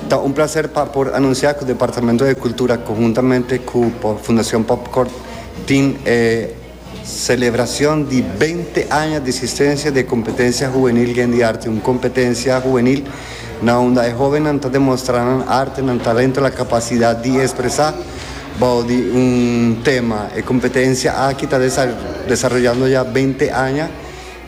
Ta un placer pa por anuncia cu Departamento de Cultura conjuntamente cu Fundacion Popcorn tin e celebracion di binte aña di existencia di e competencia huwenil Gen di Arte, un competencia huwenil na unda e hobennan ta demostra nan arte, nan talento, nan capacidad di expresa bao di un tema. E competencia aki ta desaroyando ya binte aña.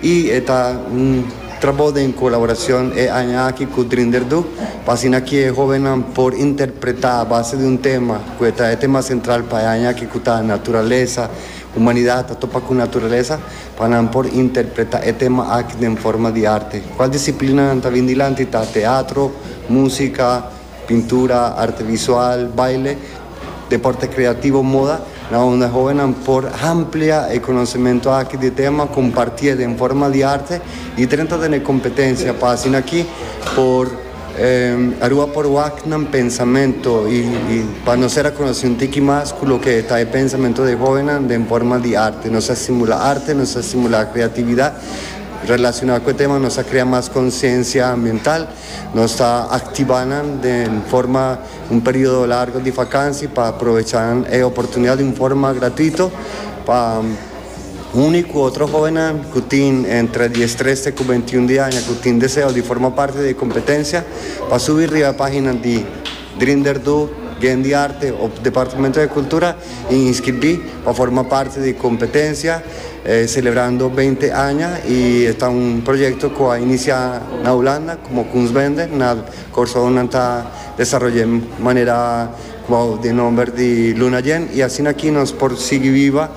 Y e ta un trabou den colaboracion e aña aki cu Drinder do, pa asina cu e hobennan por interpreta a base di un tema cu e ta e tema central pa e aña aki cu ta Naturalesa, humanidad ta topa cu naturalesa, pa nan por interpreta e tema aki den forma di arte. Cual disciplinanan ta bin dilanti ta teatro, musica, Pintura, arte visual, baile, deporte kreativo, moda, na unda hóvennan por hamplia e konosementu aki di e tema, kompartié den forma di arte i drenta den e kompetensia pa asin'akí por Aruba por wak nan pensamentu i pa nos ser a konosé un tiki mas ku loke ta e pensamentu di e hóvennan den forma di arte. Nos a stimulá arte, nos a stimulá kreatividat relasioná ku e tema, nos a krea mas konsiensia ambiental. Nos ta activa nan den forma un periodo largo di vakansi pa provecha nan e oportunidad di un forma gratuito pa uni cu otro hobennan cu tin entre diestres te cu veintiun di aña cu tin deseo di forma parte di e competencia pa subi riba e pagina di Drinderdu Gendiarte op Departamento de Cultura i inskribí pa forma parti di kompetensia Celebrando Beinti Aña i e ta un proyekto ku a inisiá na Hulanda komo Kunstbende na Kòrsou nan ta desaroy'é manera bou di e nòmber di Luna Jen i asina aki nos por sigui biba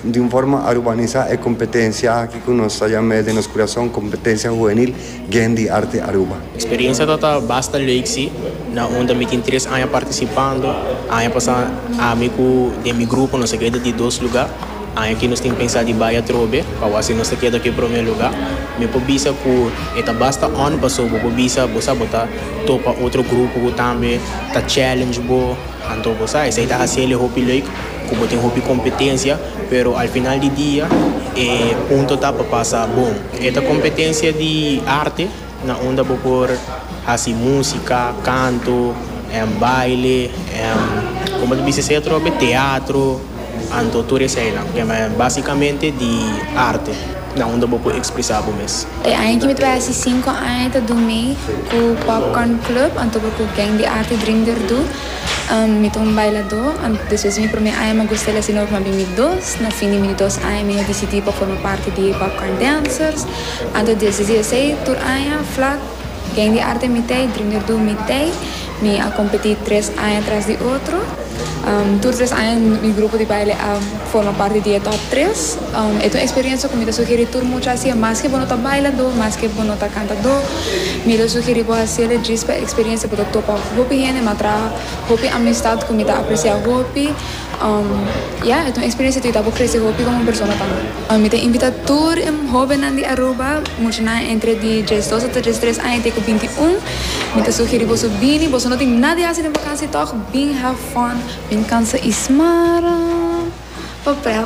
Di un forma arubanisá e kompetensia aki ku nos ta yam'é den nos kurason Kompetensia Huwenil Gen di Arte Aruba. Eksperensia ta ta basta leuk si, na unda mi tin tres aña partisipando. Aña pasá ami ku den mi grupo nos a keda di dos lugá. Aña aki nos tin pensá di bai atrobe pa wak si nos ta keda ku e promé lugá. Mi por bisa ku e ta basta òn pasobra bo por bisa bo sa bo ta topa otro grupo ku tambe ta challenge bo. Anto bo sa esei ta hasi el e hopi leuk ku bo tin hopi kompetensia, pero al final di dia e punto ta pa pasa bon. E ta kompetensia di arte na unda bo por hasi músika, kanto, baile, komo ta bisa esei atrobe, teatro. Anto tur eseinan tema básikamente di arte, na unda bo por ekspresá bo mes. E aña ki mi ta bai hasi sinku aña ta Dumé ku Popcorn Club, anto bo ku Gang di Arte Dream Derdú. Mi ta un bailadó. Despues di mi promé aña mi a gusta el hasi nobo kuma bin mi dos. Na fin di mi dos aña mi a disidí pa forma parti di Popcorn Dancers. Anto desde diesei tur aña, flat. Ken di arte mi t'ei dreamer do mi t'ei mi a kompetí tres aña tras di otro tur tres aña mi grupo di baile a forma parti di e top tres e ta un eksperensia ku mi ta sugerí tur mucha hasiel maske bo no ta bailadó maske bo no ta kantadó mi ta sugerí bo hasiel djis pa e eksperensia bo ta topa hopi hende mi a traha hopi amistat ku mi ta apresiá hopi. Ya, e ta un eksperensia ku e ta por krese hopi komo persona tambe. Mi ta invitá tur e hóbennan di Aruba, muchanan entre di djes dos ata djes tres aña te ku binti un. Mi ta sugerí boso bini, boso no tin nada di hasi den bakansia tòg, bin have fun, bin kansa i smará papèl.